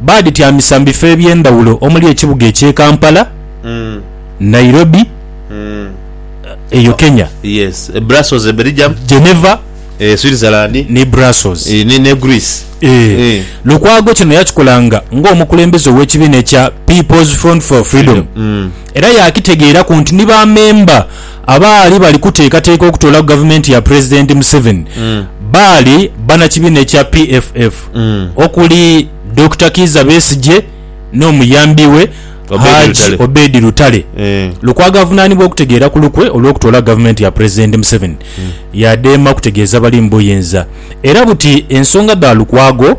Baadhityamisa mu bifo eby'endhawulo omuli ekibuga eky'e Kampala, Nairobi, eyo Kenya, Geneva, ni Brussels, Lukwago kino yakikolanga ng'omukulembeze ow'ekibiina ekya People's Front for Freedom era yaakitegeeraku nti ni ba memba Abaali bali kuteekateeka okutoolaku gavumenti ya Pulezidenti Museveni baali bannakibiina ekya PFF okuli, Dokita Kiiza Besigye n'omuyambi we Haji Obedi Lutale. Lukwago avunaanibwa okutegeera ku lukwe olw'okutoolaku gavumenti ya Pulezidenti Museveni yadema kutegeeza bali mu buyinza era buti ensonga dha Lukwago.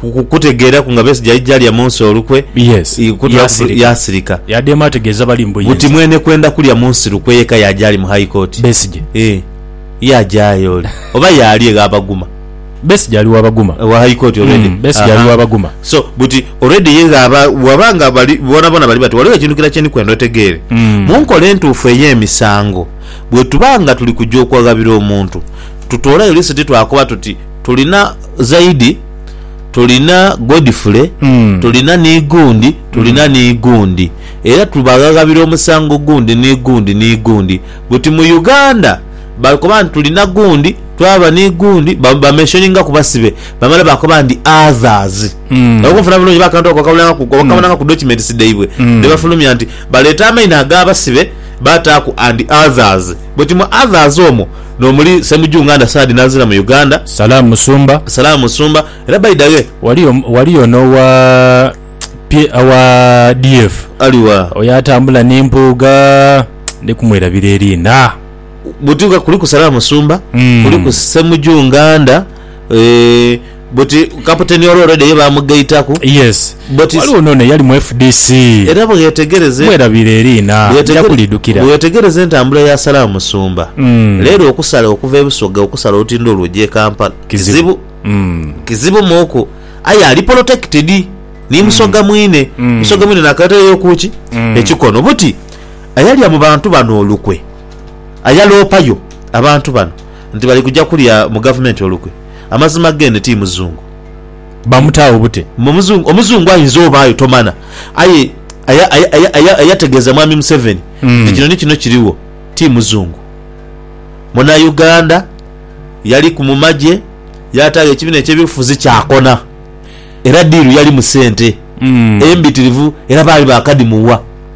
ku- ku- kutegeeraku nga Besigye aija alya munsi olukwe, Yes, i- kuta- yaasirika. yaasirika. Yaadhemu ategeeza bali mbu Buti yenze. mwene kwenda kulya munsi lukwe yeka yaaja ali mu High Court. Besigye. Eh, yaajayo ole. Oba yaali egha Baguma. Besigye ali wa Baguma. Wa High Court already. Mm, Besigye ali Aha. wa Baguma. So, buti already ye ghaba bwaba nga bali bonaboona bali bati ghaligho ekintu kira kye ndi kwenda otegeere. Mm. Mu nkola entuufu ey'emisango, bwe tuba nga tuli kuja okwaghabira omuntu, tutoolayo lisiti twakoba tuti Tulina Zaidi, tulina Godfrey, tulina ni gundi, tulina ni gundi. Era tubaghaghabira omusango gundi ni gundi ni gundi guti mu Uganda bakoba nti tulina gundi, twaba ni gundi, ba, bamentioningaku basibe, bamala bakoba nti others. Era okunfuna bulungi oba akantu ako okabulangako, okakabonanga ku documents dhaibwe dhe bafulumya nti baleeta amaina ag'abasibe bataaku and others. Buti mu others omwo. Nomuli Ssemujju Nganda Saadi Nanzira mu Uganda. Salaam Musumba. Salaam Musumba. Era by da way. Waliyo waliyo n'owa pye owa DF. Ali wa? Oyo atambula ni Mpuuga. Ndi kumwerabira eriina. Buti nga kuliku Salaam Musumba, kuliku Ssemujju Nganda. But kaputeni ole already ye bamugaitaku. Yes. But it's- Waliwo nono eyali mu fdc. Era bweyetegereze Mwerabire eriina. Nja bweyetegere- kulidukira. bweyetegereze entambula ya Salah Musumba Mm. leero okusala okuva e Busoga okusala olutindo olwo oja e Kampala kizibu Mm. kizibu muku aye ali protected ni Musoga mwine Mm. Musoga mwine nakaletereyo kuki Mm. ekikono buti ayalya mu bantu bano olukwe ayaloopayo abantu bano nti bali kuja kulya mu gavumenti olukwe Amazima gene ti muzungu. Bamutaagho bute? Mbu omuzungu, omuzungu ayinza obaayo tomana. Aye aya, aya, aya, aya, ayategeeza Mwami Museveni nti kino ni kino kirigho, ti muzungu. Munauganda, yaliku mu magye, yaataagho ekibiina eky'ebyobufuzi kyakona. Era diiru yalimu sente embitirivu era baali baakadhimuwa.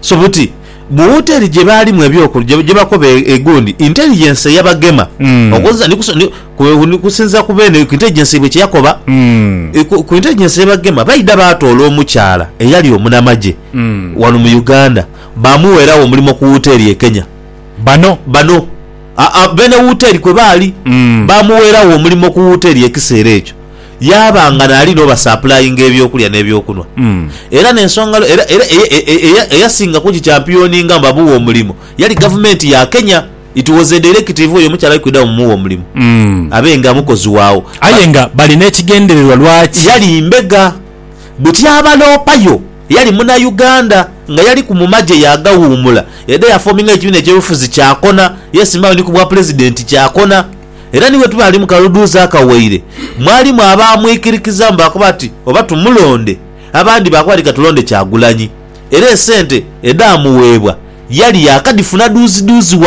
So buti mu woteri gye baalimu eby'oku gye bakoba egundi intelligence eyabagema okukozesa ni kuso ni ku ni kusinziira ku beene ku intelligence yaibwe kye yakoba ku ku intelligence eyabagema baidha baatoola omukyala eyali omunamagye wano mu Uganda baamuweeragho omulimo ku woteri e Kenya. Bano? Bano. Aa beene woteri kwe baali baamuweeragho omulimo ku woteri ekiseera ekyo. Yaaba nga naali n'obasapulayinga eby'okulya n'eby'okunhwa. Era n'ensonga lwe, era, era eye, e, e, eya, eyasinga kugikyampiyoninga nga bamuwa omulimo yali gavumenti ya Kenya. It was a directive, oyo omukyala ali kwidha bamumuwe omulimo abe nga mukozi waagho. Aye nga bali n'ekigendererwa lwaki. Yali mbega. Buti abaloopayo, yali Munauganda, nga yaliku mu magye yaagawuumula, yaidha yafoominga ekibiina eky'obufuzi, kyaakona, yeesimbagho ni ku bwapulezidenti, kyaakona. Era ni bwe tuba ali mu kaludhuuzi akawaire, mwalimu abaamwikirikizamu baakoba bati oba tumulonde. Abandi baakoba bati ka tulonde Kyagulanyi. Era esente edhaamuweebwa yali yaakadhifuna dhuuzidhuuzi ghano.